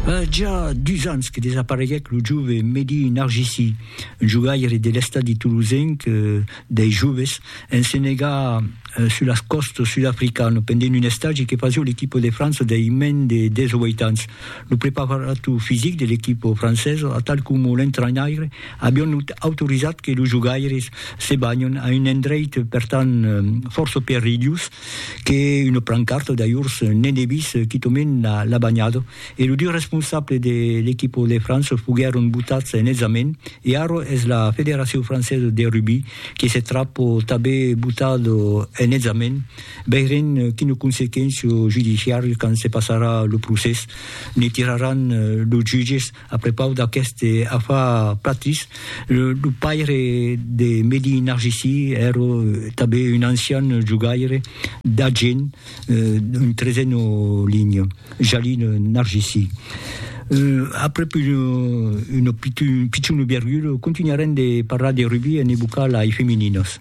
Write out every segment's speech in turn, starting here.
A ja dus ans que desapareguèc lo jove Mehdi Narjissi, un jogaire de l'estadi tolosenc dei joves, en se negar sus las còstas sud-africano pendent un estagi que fasió l'equipa de França dei mens de 18 ans. Lo preparator fisic de l'equipa francesa atal coma l'entrainaire avián autorizat que los jogaires se banhon a un endreit per tant fòrça perilhós, que una plancarta d'ajors ne debís quitament la banhada e lo 2 responsable de l'equipa de França foguèron botats en examen e ara es la Federacion Francesa de Rugbi que se trap tanben botat en examen veirem quina consequéncia judiciària quand se passarà lo procès ne tiraràn los jutges A prepaus d'aqueste afar Platris, lo paire de Mehdi Narjisi èra tanben un ancian jogaire d'Agen, un trezeno linha, Jalil Narjisi. Aprèp un pichon virgul, contunharem de parlar de rugbi en evocar lai femininas.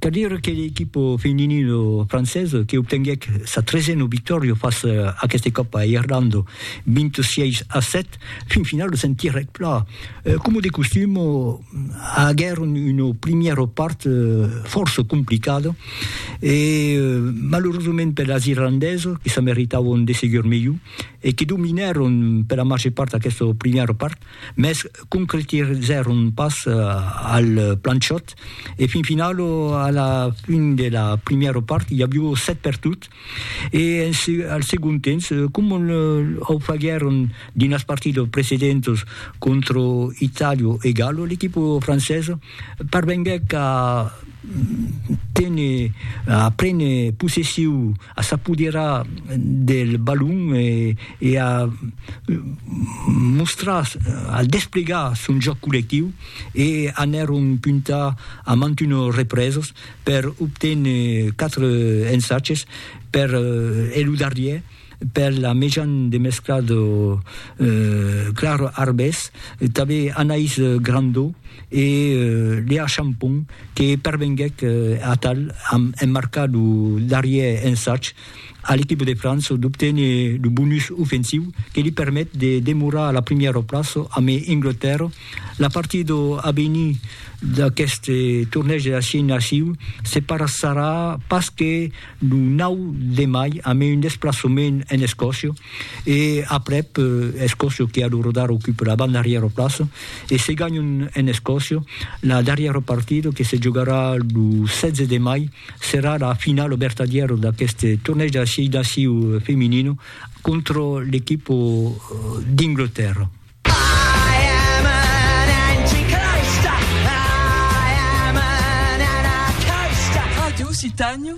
Cal dire que l'equipo feminino francés que obtenguèc sa tresena victòria fas aqueste còp a Irlanda 26 a 7, fin finala se'n tirèc pla. Coma de costum, aguèron una primièra part fòrça complicada e malerosament per las irlandesas que se meritavan de segur melhor e que dominèron per la màger part aquesta primièra part, mès concretizèron pas al plan shot e fin final a la fin de la primièra part i avió 7 per tot e al segon temps com au faguèron dins las partidas precedentas contra Itàlia e Galo l'equipa francesa Parvenguèc a téner, a préner possessiu, a s'apoderar del balon e a mostrar, a desplegar son jòc collectiu e anèron puntar a mantuno represes per obténer 4 ensatges per e lo darrièr. Per la mejan de mescla de clar arbès, tanben Anaïs Grandau e Léa Champon que pervenguèc atal amb emmarcar lo darrièr ensag a l'equipa de França d'obténer lo bonus ofensiu que li permet de demorar a la primièra plaça amb Anglatèrra. La partida a venir d'aqueste tornèg de la Xina Siu se passarà pas que lo 9 de mai amb un desplaçament en Escòcia e aprèp Escòcia que a lo rodar ocupa la banda darrièra plaça e se ganhon en Escòcia la darrièra partida que se jogarà lo 16 de mai serà la finala vertadièra d'aquest tornèig de la 6 naciu feminina contra l'equipa d'Inglterra. Radio Occitània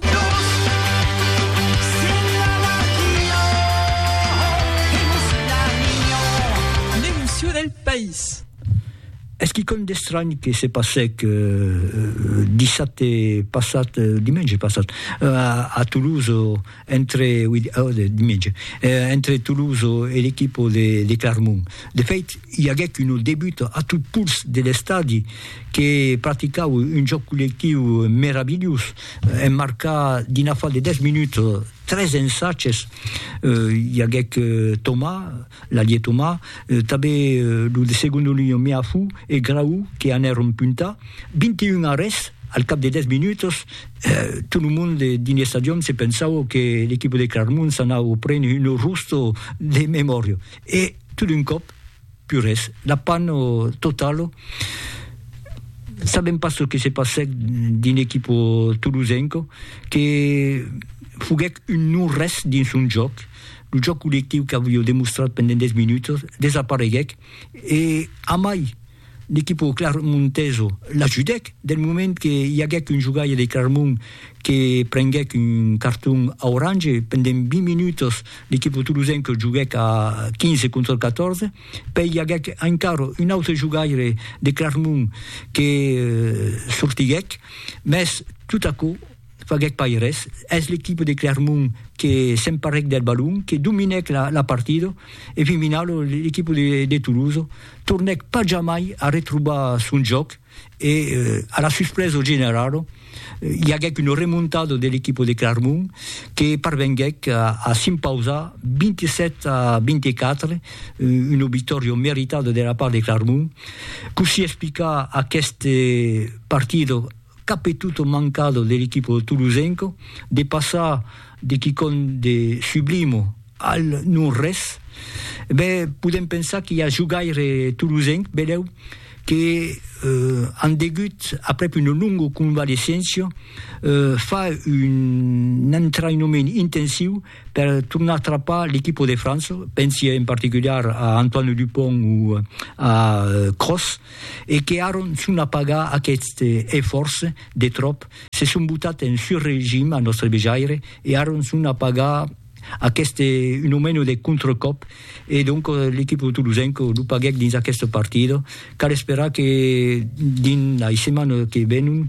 L'emocion del país Es quicòm d'estranh que se passèc dissabte passat, dimenge passat, a Toulouse, entre Toulouse e l'equipa de Clermont. De fèit, i aguèt una debuta a tot puls de l'estadi que practicava un jòc collectiu meravilhós, en marcar dins l'afal de 10 minutas tres ensatges, i aguèt Thomas, l'alier Thomas, tanben lo de segona linha Meafou e Grau que anèron puntar, 21 arrèsts al cap de 10 minutas, Tot lo monde dins l'estadion se pensava que l'equipa de Claremont s'anava a prene un rosto de memòria e tot d'un còp, pus res, la pan totala. Sabèm pas çò que se passèc dins l'equipa tolosenca, que foguèc un non-res dins son jòc, lo jòc collectiu qu'aviá demostrat pendent 10 minutas desapareguèc e amai! L'equipo clarmonteso l'ajudèc del moment que i aguèc un jogaire de Clarmont que prenguèc un carton aurange pendent 20 minutos, l'equipo tolosenc joguèc a 15 contra 14, pèi i aguèc encara un autre jogaire de Clarmont que sortiguèc, mès tot aquò. faguèc pas res, es l'equipe de Clermont que s'emparèc del balon, que dominèc la partida e fin finau l'equipe de Toulouse tornèc pas jamai a retrobar son jòc e a la suspresa generala i aguèc una remontada de l'equipe de Clermont que parvenguèc a s'impausar 27 a 24, una victòria meritada de la part de Clermont. Cossí explicar aquesta partida Cap e tot o mancado de l'equipo tolosenco de passar de quicòm de sublimo al non res, ben podem pensar qu'i a jogaire tolosenc, belèu, que an degut, aprèp una longo convalescéncia, far un entrainoment intensiu per tornar a trapar l'equipo de França, pensi en particular a Antoine Dupont o a Kroos, e que aron son a pagar aqueste efòrç de tròp, se son botat en surregim a nòstre vejaire e aron son a pagar aqueste un o meno de contracòp e donc l'equipo tolosenc lo paguèc dins aqueste partida, cal esperar que dins lei setmanas que venon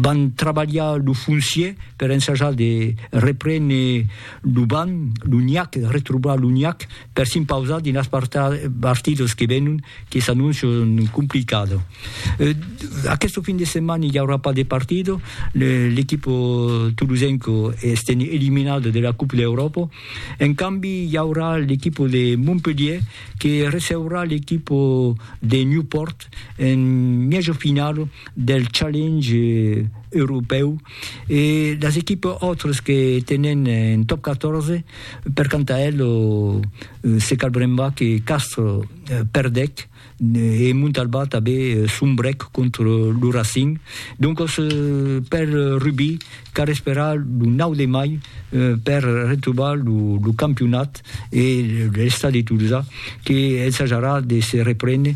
van trabalhar lo foncier per ensajar de reprene lo banc, lo niac, retrobar lo niac. per s'impausar dinas partidos que venon que s'annoncian complicado. Aquesto fin de setmana i aurà pas de partido, l'equipo tolosenco estèn eliminado de la Coupe d'Europa, en cambi i aurà l'equipo de Montpelhier que receurà l'equipo de Newport en mièjo finalo del Challenge europèu e las equipas autres que tenen en Top 14 Per quant a el, se cal brembar que Castro perdèc e Montalbà tanben sombrèc contra lo Racing. Doncas, per Rubí, cal esperar lo 9 de mai per retrobar lo campionat e l'Estadi de Tolosa que ensajarà de se reprene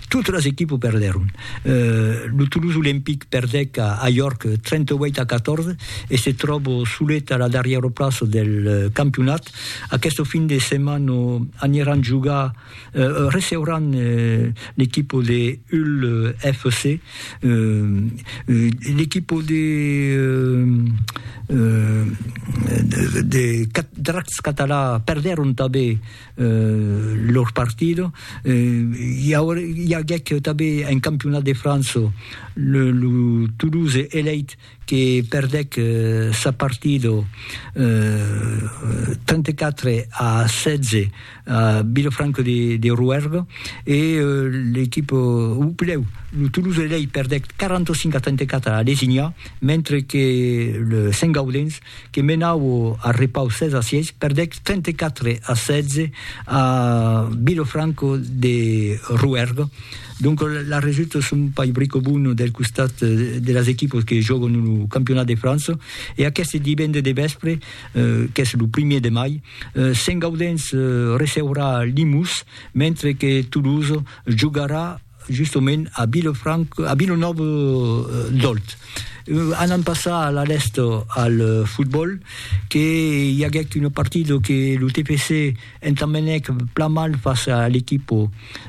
Totes las equipes perdèron. Lo Toulouse Olympique perdèc a York 38 a 14 e se tròba solet a la darrièra plaça del campionat. Aquesta fin de setmana aniran jogar, receuràn l'equipa de Hull FC. L'equipa de Dracs Català perdèron tanben lor partido i aguèc tanben en campionat de França lo Toulouse Elite que perdèc sa partido 34 a 16 a Vilafranca de Rouergue e l'equipa o plèu lo Toulouse Elite perdèc 45 a 34 a Lesignà mentre que Saint Gaudens que menau a repau 16 a 6, perdec 34 a 16 a Vilofranco de Rouergue. Donc la resulta son pas brico bon del costat de las equipos que jòguen lo Campionat de França e aqueste divende de vèspre, qu'es lo primièr de mai, Sent-Gaudens receurà Limous, mentre que Toulouse jogarà Justement, a Vilefranca, a Vilanòva d'Òlt, anam passar a la lèsta al fotbòl, que i aguèc una partida que lo TFC entambenèc plan mal fàcia a l'equipa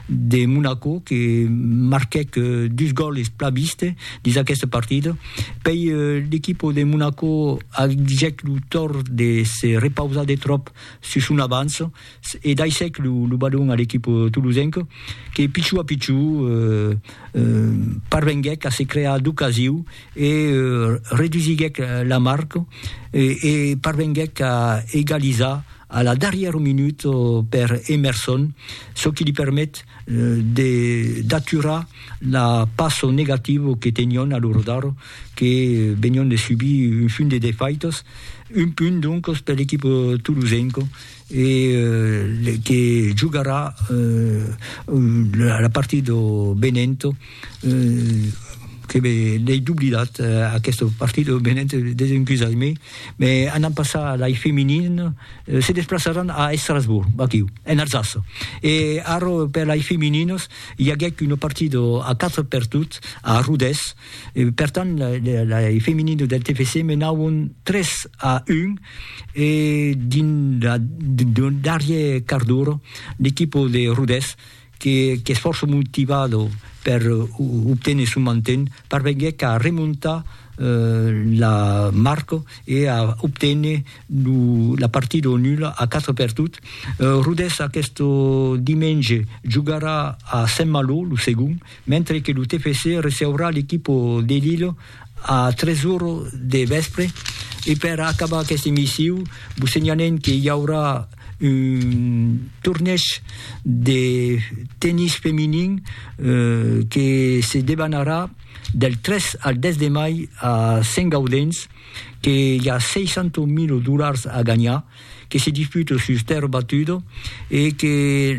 de Monaco, que marquèc dus gòles plan viste dins aquesta partida. Pei l'equipa de Monaco agèc lo tòrt de se repausar de tròp sus son avança, e daissèc lo balon a l'equip tolosenc que pichou a pichou parvenguèc a se crear d'ocasiu e redusiguèc la marc e parvenguèc a egalizar a la darrièra minut per Emerson, çò qui li permet d'aturar la passo negativa que tenion a lo rodar que venion de subir un funt de defaitas, un punt doncas per l'equip tolosenc. e que jogarà la partida de Benevento que l'ai doblidat aquesta partida de Benevento desencusatz-me me anam passar lai feminin se desplaçaràn a Estrasburg aquiu en Alsace e ara per lai femininas i aguèc una partida a 4 per tot a Rodés E per tant, lei femininos del TFC menavon 3 a 1 e dins lo darrier quart d'ora l'equipo de Rodés qu'es fòrça motivado per obténer son manten parvenguèc a remontar la marca e a obténer la partida au nul a 4 per tot. Rodés aqueste dimenge jogarà a Saint-Malo lo segond. mentre que lo TFC receurà l'equipo de Lillo a 3 oro de vèspre e per acabar aqueste missiu vos senhalem que i aurà un torneg de tennis feminin que se debanarà del 3 al 10 de mai a Sent Gaudens que i a 600.000 dolars a ganhar que se disputa sus tèrra batuda e que